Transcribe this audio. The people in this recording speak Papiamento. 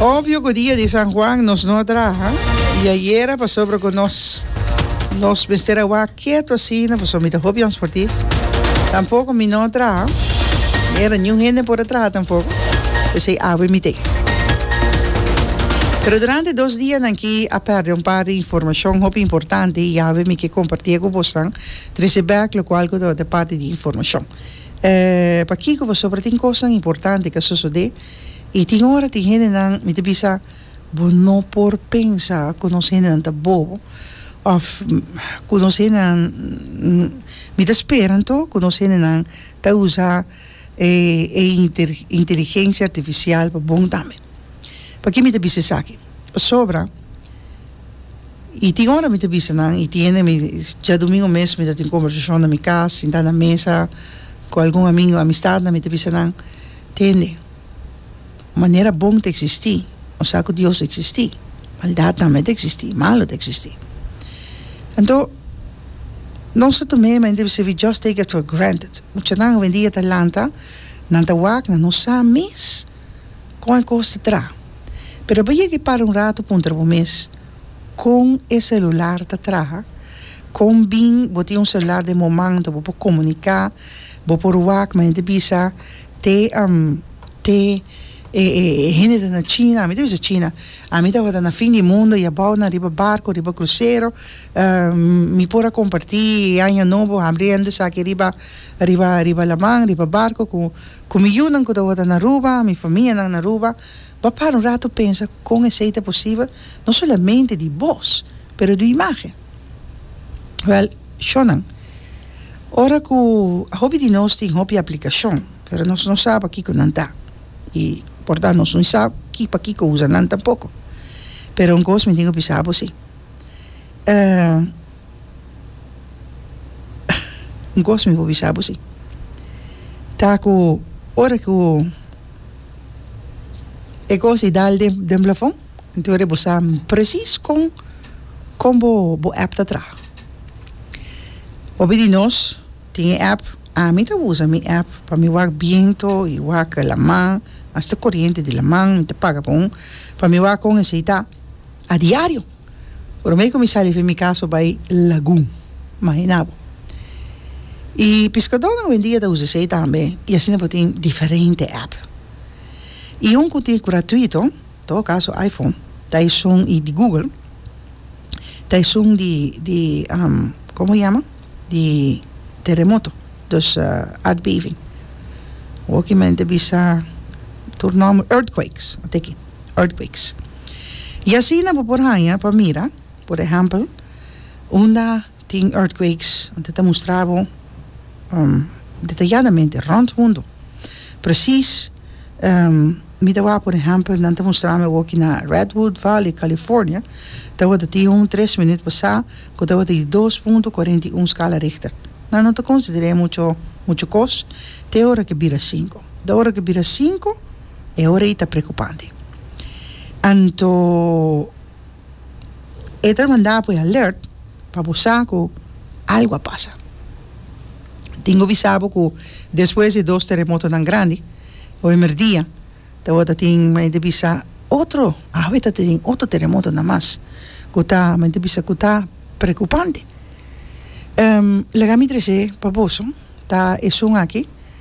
Obvio cu dia di San Juan nos no a traha y ayera pasobra cu nos nos mester a wak ketu asina pasobra mi ta hopian sportif tampoco mi no a traha ayera niun hende por a traha tampoco pesey awe mi t'e. Pero durante e dos dianan aki a perde un par di informacion hopi importante y awe mi ke comparti'e cu bosnan trece bek locual cu ta ota e parti di informacion. E pakiko pasobra tin kosnan importante ke a sosodé i tin ora tin hendenan mi ta bisa bo no por pensa ku nos hendenan ta bobo òf ku nos hendenan mi ta spera anto ku nos hendenan ta usa e inteligensia artifisial pa bon tambe. P'aki mi ta bisa esaki? Pasobra i tin ora mi ta bisa nan i tiene mi djadumingu mes mi ta tin kombersashon na mi kas sintá na mesa ku algun amingu amistatnan mi ta bisa nan tende manera bon ta eksistí bo sa ku dios ta eksistí maldat tambe ta eksistí malu ta eksistí anto nos ta tum'é men debe ser we just take it for granted muchanan hoendia ta lanta nan ta wak nan no sa mes kon e kos ta tra. Pero bai yega i para un ratu puntra bo mes, Kon e selular ta traha? Kon bin bo tin un selular den bo man anto bo por komuniká, bo por wak men ta bisa te te e hende ta na china, ami ta bisa china, ami tabata na fin di mundo i abou nan riba barko, riba krusero, mi por a kompartí e aña nobo hambriendo esaki riba riba riba laman, riba barko ku Ku mi yunan ku ta wòrdu na Aruba, mi famianan na Aruba, bo a para un ratu pensa kon esei ta posibel, no solamente di bos, pero di imágen. Wèl, shònan, ora ku a hopi di nos tin hopi aplikashon, pero nos no sa pa kiko nan ta, i por ta nos no sa pa kiko usa nan tampoko. Pero un kos mi tin ku bisa abo si. Un kos mi por bisa bo si ta ku ora ku e kos i dal den blafon enton bo sa presis kon kon bo app ta traha hopi di nos tin e app ami ta usa mi app pa mi wak biento i wak laman asta koriente di laman mi ta paga pa un pa mi wak kon e si ta A diario. Prome ku mi sali fin mi kaso bai lagun. Mahina bo. I piskadónan ovendia ta usa esei tambe i asina bo tin diferente app. I un ku tin gratuito, todo kaso iPhone, ta esun i di Google, ta esun di di komo yama di teremoto, dus aardbeving. Wòkimèn ta bisa tur nòmber, earthquakes, a teken. earthquakes. I asina bo por haña pa mira, por ehèmpel, unda tin earthquakes, anto ta mustra bo detayadamente rònt mundo presis. Mi ta wak, por ehèmpel, nan ta mustra mi awoki na Redwood Valley, California, tabata tin un tres minüt pasá ku tabata di dos punto kuarenta i un skala Richter. Nan no ta konsider'é mucho kos te ora ke bira sinku. Te ora ke bira sinku. E ora ei ta preocupante. Anto e ta manda apo e alert pa bo sa cu algo a pasa. Tin cu bisa bo cu despues di e dos terremotonan grandi hoemer dia tabata tin men ta bisa otro, awe ta tin otro terremotonan mas cu ta men ta bisa cu ta preocupante. Laga mi trece pa boso ta esun aki.